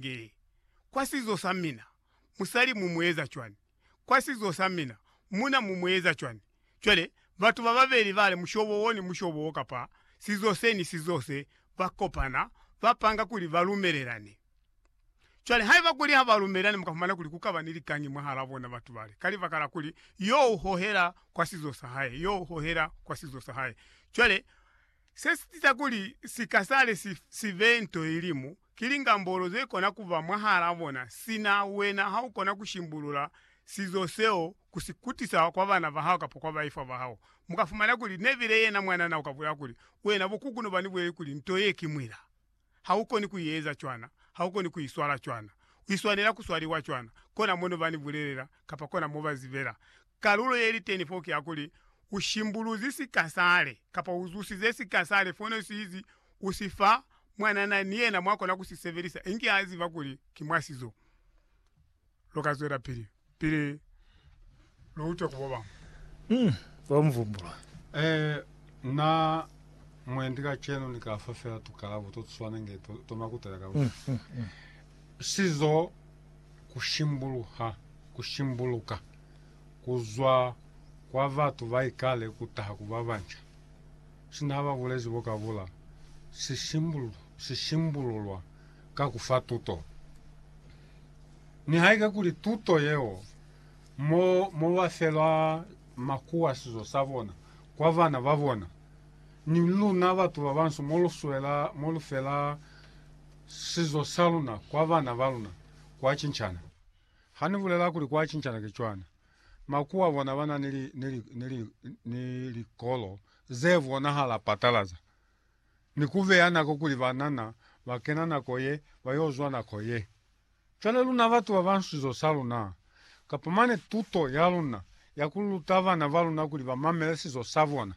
Nge, kwa sizo sa mina, musali mu mu eza cwani? Kwa sizo sa mina, muna mu mu eza cwani? Cwale, batu bababeli bale mushobo wo ni mushobo wo kapa sizo se ni sizo se, ba kopana, ba panga kuli ba lumelelani. Cwale, haiba kuli ha ba lumelelani, mu ka fumana kuli ku kaba ni likangi mwahalaa bona batu bale, ka libaka la kuli yo u hohela kwa sizo sa hae, yo u hohela kwa sizo sa hae. Cwale, se si tiisa kuli sika sale si, si be nto ye limu, Ki lingambolo ze kona kuba mwahala bona, sina wena ha u kona ku shimbulula sizo seo ku si kutisa kwa bana ba hao kapa kwa baifwa ba hao. Mu ka fumana kuli Neville yena mwanana u ka bulela kuli, Wena bo kukunu ba ni buleli kuli nto ye ki mwila. Ha u koni ku i eza cwana. Ha u koni ku i swala cwana. U i swanela ku swaliwa cwana. Kona mono ba ni bulelela, kapa kona mo ba zibela. Kalulo ye li teni fo ki ya kuli, U shimbuluzi sika sale, kapa u zusize sika sale fono si izi u si fa Mwanana ni yena mwa kona ku si sebelisa inge a ziba kuli ki mwa sizo. Lu ka zwelapili pili lu utwe ku bobañwi. Hmm. Wa mu vumbula. Ee, na, mwendi kacenu ni ka fa fela tukalabo to tuswana inge to, to makutela ka luna. Sizo, ku shimbuluha, ku shimbuluka, ku zwa kwa batu ba ikale ku taha ku ba banca. Sina ba bulezi bo ka bula, si shimbululwa ka ku fa tuto. Nihaike kuli tuto yeo mo, mo ba felwa makuwasizo sa bona kwa bana ba bona, ni luna batu ba bansu mo lu swela, mo lu fela sizo sa luna kwa bana ba luna, kwa cincana. Ha ni bulela kuli kwa cincana ki cwana, Makuwa bona ba na ni likolo ze bonahala patalaza ni ku beya nako kuli banana ba kena nako ye, ba yo zwa nako ye. Cwale luna batu ba bansu zo sa luna, kapa mane tuto ya luna ya ku luta bana ba luna kuli ba mamele sizo sa bona,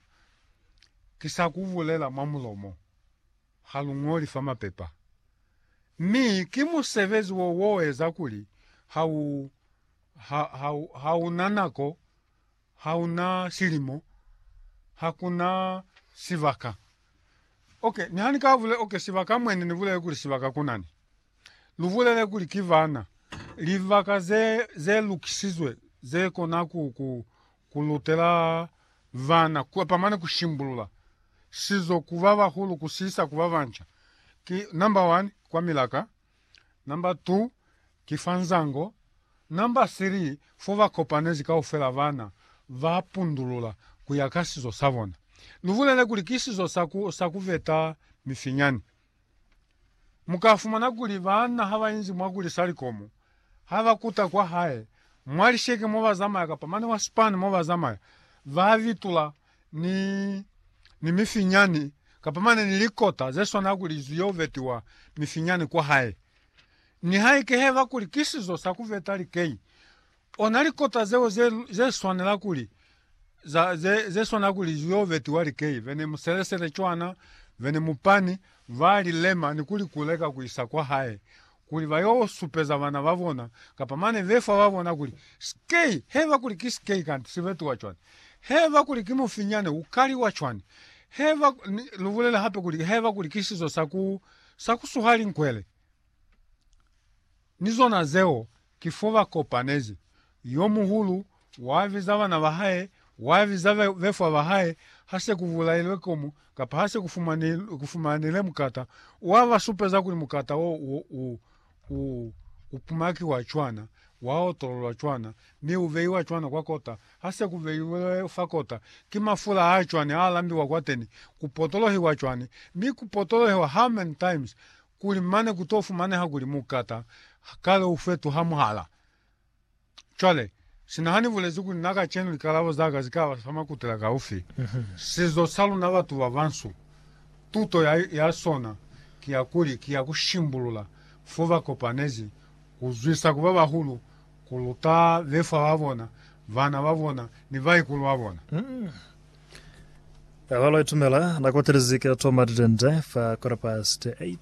ki sa ku bulela mwa mulomo, ha lu ñoli fa mapepa. Mi ki musebezi wo wo eza kuli ha u ha, ha, ha una nako, ha una silimo, hakuna sibaka. Okay, ni hani ka vule, okay, sibaka mwene ni bulele kuli sibaka kunani. Lu bulele kuli ki bana libaka ze ze lukisizwe ze kona ku ku kulutela vana ku pamane ku shimbulula sizo ku ba bahulu kusisa ku ba banca. Ki number 1 kwa milaka. Number 2 ki fa nzango. Number 3 fo ba kopanezi kaufela bana ba pundulula ku ya ka sizo sa bona. Lu bulele kuli ki sizo sa ku sa ku beta mifinyani. Mu ka fumana kuli bana ha ba inzi mwa ku lisa likomo, ha ba kuta kwa hae, mwa lisheke mo ba zamaya kapa mane mwa sipani mo ba zamaya, ba bitula ni, ni mifinyani, kapa mane ni likota ze swana kuli zwi yo vetiwa mifinyani kwa hae. Nihaike heba kuli ki sizo sa ku veta likei, ona likota zeo ze, ze swanela kuli, za, ze, ze swana kuli zwi yo vetiwa likei, bene muselesele cwana, bene mupani, ba li lema ni ku li kuleka ku isa kwa hae, kuli ba yo supeza bana ba bona, kapa mane be fa ba bona kuli, Skei! Heba kuli ki skei kanti si betuwa cwani? Heba kuli ki mufinyane u kaliwa cwani? Heba, ni lu bulele hape kuli, heba kuli ki sizo sa ku, sa ku suha linkwele. Ni zona zeo Ki fo ba kopanezi. Yo muhulu wa biza bana ba hae, wa biza befwa ba hae, ha se ku bulailwe komu, kapa ha se ku fumanile mukata, wa ba supeza kuli mukata wo u, u, u, u pumakiwa cwana, wa otololwa cwana, mi u beiwa cwana kwa kota. Ha se ku beilwe fa kota, ki mafula a cwani a lambiwa kwateni, ku potolohiwa cwani, mi ku potolohiwa how many times? kuli mane ku to fumaneha kuli mukata kale u fetuha muhala. Cwale, sina ha ni bulezi kuli na kacenu likalabo za ka zi ka ba fa makutela kaufi, sizo sa luna batu ba bansu, tuto ya, ya sona ki ya kuli ki ya ku shimbulula fo ba kopanezi, ku zwisa ku ba bahulu, ku luta befwa ba bona, bana ba bona, ni baikulu ba bona. Awalo ya itumela na kotelezi ke toma didende fa quarter past 8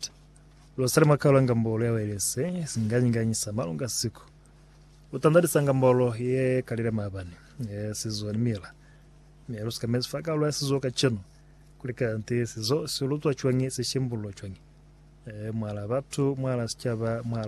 losali makalo ngambolo ya welese singanyiganyi sa malunga siku utandalisa ngambolo ye kalile mabani ye sizo ni mila me lusika mezi fa kalo ya sizo ka chenu kulika nti sizo silutwa chwangi sishimbulo chwangi e mwala batu mwala sichaba mwala